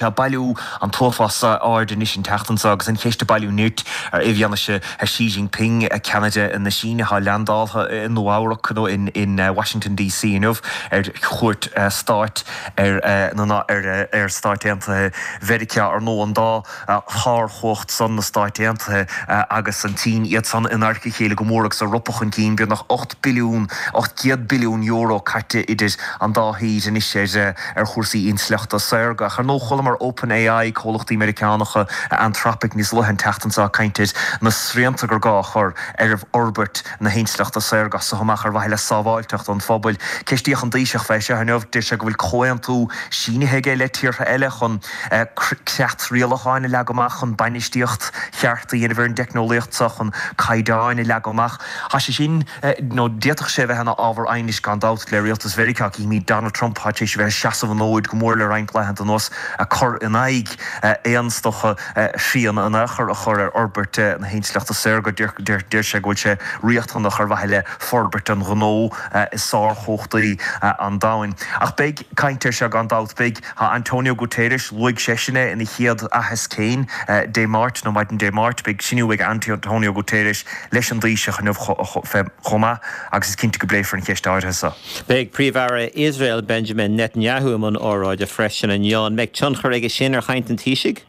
Tá ag bailiú an t-uafás aird anois an tseachtain seo agus an cheist ag bailiú nirt ar i bhfianaise Xi Jinping, ceannaire na Síne, atá leandáltha i Nua-Eabhrac, nó in Washington DC inniu, ar Chuairt Stáit ar na ar Stáit Aontaithe Mheiriceá, ar ndóigh, an dá shárchumhacht san, na Stáit Aontaithe agus an tSín, iad san in adharca a chéile go mór agus ag ropadh chun cinn, beagnach ocht billiún, €800 billiún, caite idir an dá thír anois ar. ar chúrsaí intleachta saorga. Ach ar ndóigh, chualamar OpenAI, comhlachtaí Meiriceánacha, Anthropic níos luaithe an tseachtain seo ag caint ar na srianta gur gá a chur ar fhorbairt na hintleachta saorga as so amach ar mhaithe le sábháilteacht an phobail. Ceistíodh an Taoiseach fé seo inniu. Deir sé go bhfuil comhaontú sínithe aige le tíortha eile chun creat rialacháin a leagadh amach chun bainistíocht cheart a dhéanamh ar an dteicneolaíocht so, chun caighdeáin a leagadh amach. Tá sé sin, nó d'fhéadfadh sé a bheith, ina ábhar aighnis gan dabht le rialtas Mheiriceá. Címid Donald Trump, atá tar éis a bheith ag seasamh an fhóid go mór le roinnt laethanta anuas, ag cur in aghaidh aon tsórt srian in aon chor a chur ar fhorbairt na hintleachta saorga. Deir sé go bhfuil sé riachtanach ar mhaithe le forbairt an ghnó i sárchumhachtaí an domhain. Ach beidh caint air seo gan dabht. Beidh. Tá Antonio Guterres, luaigh seisean é ina chéad aitheasc féin Dé Máirt, nó maidin Dé Máirt, beidh cruinniú ag Antonio Guterres leis an dTaoiseach inniu chomh maith agus is cinnte go bpléifear an cheist áirithe seo. Beidh Príomh-Aire Iosrael Benjamin Netanyahu i mbun óráide freisin inniu. An mbeidh tionchar aige sin ar chaint an Taoisigh?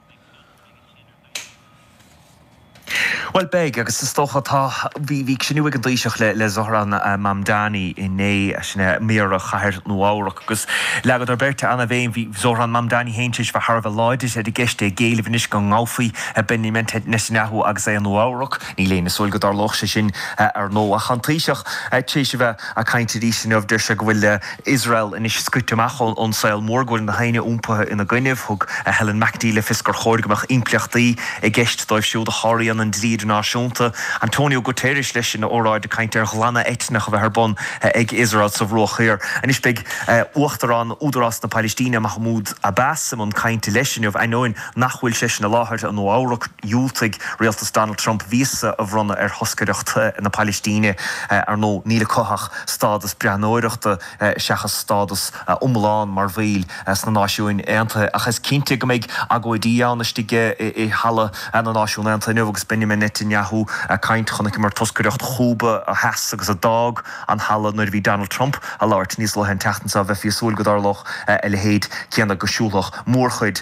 Bhuel, beidh, agus is dócha atá. Bhí cruinniú ag an Taoiseach le Zohran Mamdani inné, sin é Méara Chathair Nua-Eabhrac, agus leagadar beirt an-bhéim, bhí Zohran Mamdani féin tar éis a bheith thar a bheith láidir ar an gceist, é ag éileamh anois go ngabhfaí a Benjamin Netanyahu agus é i Nua-Eabhrac. Níl éinne ag súil go dtarlódh sé sin, ar ndóigh, ach tá an Taoiseach tar éis a bheith ag caint arís inniu. Deir sé go bhfuil Iosrael anois scoite amach ón saol mór, go bhfuil nach éinne iompaithe ina gcoinnibh. Thug Helen McEntee le fios gur chóir go mbeadh impleachtaí i gceist dóibh siúd a sháraíonn an dlí idirnáisiúnta. Antonio Guterres, leis, ina óráid ag caint ar ghlanadh eitneach a bheith ar bun ag Iosrael sa Bhruach Thiar. Anois beidh Uachtarán Údarás na Pailistíne, Mahmoud Abbas, i mbun cainte, leis, inniu, ainneoin, nach bhfuil seisean i láthair, i Nua-Eabhrac, dhiúltaigh rialtas Donald Trump víosa a bhronnadh ar thoscaireacht na Pailistíne. Ar ndóigh, níl acu ach stádas breathnóireachta seachas stádas iomlán mar bhaill sna Náisiúin Aontaithe, ach is cinnte go mbeidh agóidí ann istigh i Halla na Náisiún Aontaithe inniu agus Benjamin Netanyahu ag caint. Chonaiceamar toscaireacht Chúba a sheas agus a d'fhág an halla nuair a bhí Donald Trump ag labhairt níos luaithe an tseachtain seo. Bheifí ag súil go dtarlódh a leithéid céanna, go siúlfadh mórchuid.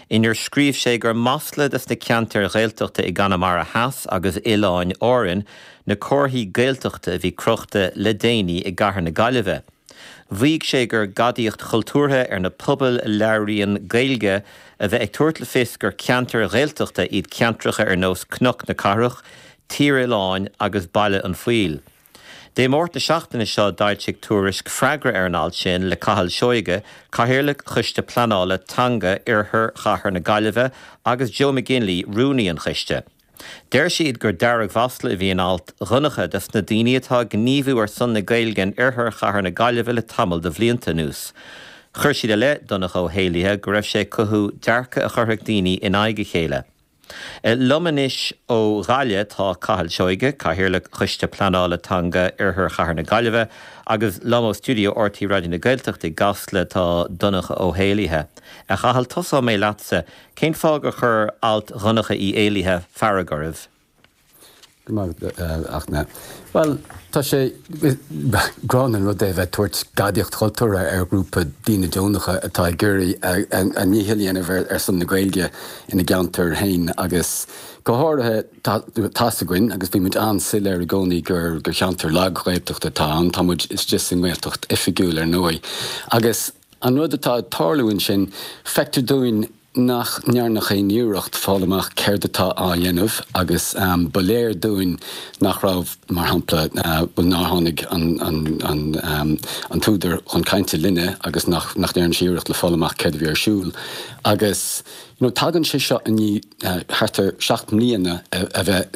inar scríobh sé gur masla dos na ceantair Ghaeltachta i gConamara Theas agus Oileáin Árann na comharthaí Gaeltachta a bhí crochta le déanaí i gcathair na Gaillimhe. Mhaígh sé gur gadaíocht chultúrtha ar na pobail a labhraíonn Gaeilge a bheith ag tabhairt le fios gur ceantair Ghaeltachta iad ceantracha ar nós Cnoc na Cathrach, Tír Oileáin agus Baile an Phoill. Dé Máirt na seachtaine seo d'fhoilsigh Tuairisc freagra ar an alt sin le Cathal Seoige, Cathaoirleach Choiste Pleanála Teanga Oirthear Chathair na Gaillimhe agus Joe McGinley, Rúnaí an Choiste. Deir siad gur deargmhasla a bhí in alt Dhonncha dos na daoine atá ag gníomhú ar son na Gaeilge in Oirthear Chathair na Gaillimhe le tamall de bhlianta anuas. Chuir siad i leith Dhonncha Ó hÉallaithe go raibh sé ag cothú dearcadh a chuirfeadh daoine in aghaidh a chéile. Liom anois ó Ghaillimh tá Cathal Seoige, Cathaoirleach Choiste Pleanála Teanga Oirthear Chathair na Gaillimhe, agus liom ó stiúideo RTÉ Raidió na Gaeltachta i gCasla tá Donncha Ó hÉallaithe. A Chathail, tosóidh mé leatsa. Cén fáth gur chuir alt Dhonncha Uí Éallaithe fearg oraibh? Go maith, Fachtna. Bhuel, tá sé gránna an rud é a bheith ag tabhairt gadaíocht chultúrtha ar ghrúpa daoine deonacha atá ag iarraidh a ndícheall a dhéanamh ar son na Gaeilge ina gceantar féin agus go háirithe, tá's againn agus bhí muid an-soiléir i gcónaí gur cheantar lag-Ghaeltachta atá ann, tá muid istigh sa nGaeltacht oifigiúil ar ndóigh agus. An rud atá ag tarlú ansin, feictear dúinn nach ndearnadh aon iarracht fáil amach céard atá á dhéanamh agus ba léir dúinn nach raibh, mar shampla, bhuel, nár tháinig an t-údar chun cainte linne agus nach ndearna sé iarracht le fáil amach céard a bhí ar siúl agus, you know, tagann sé seo i ndiaidh thart ar seacht mbliana a bheith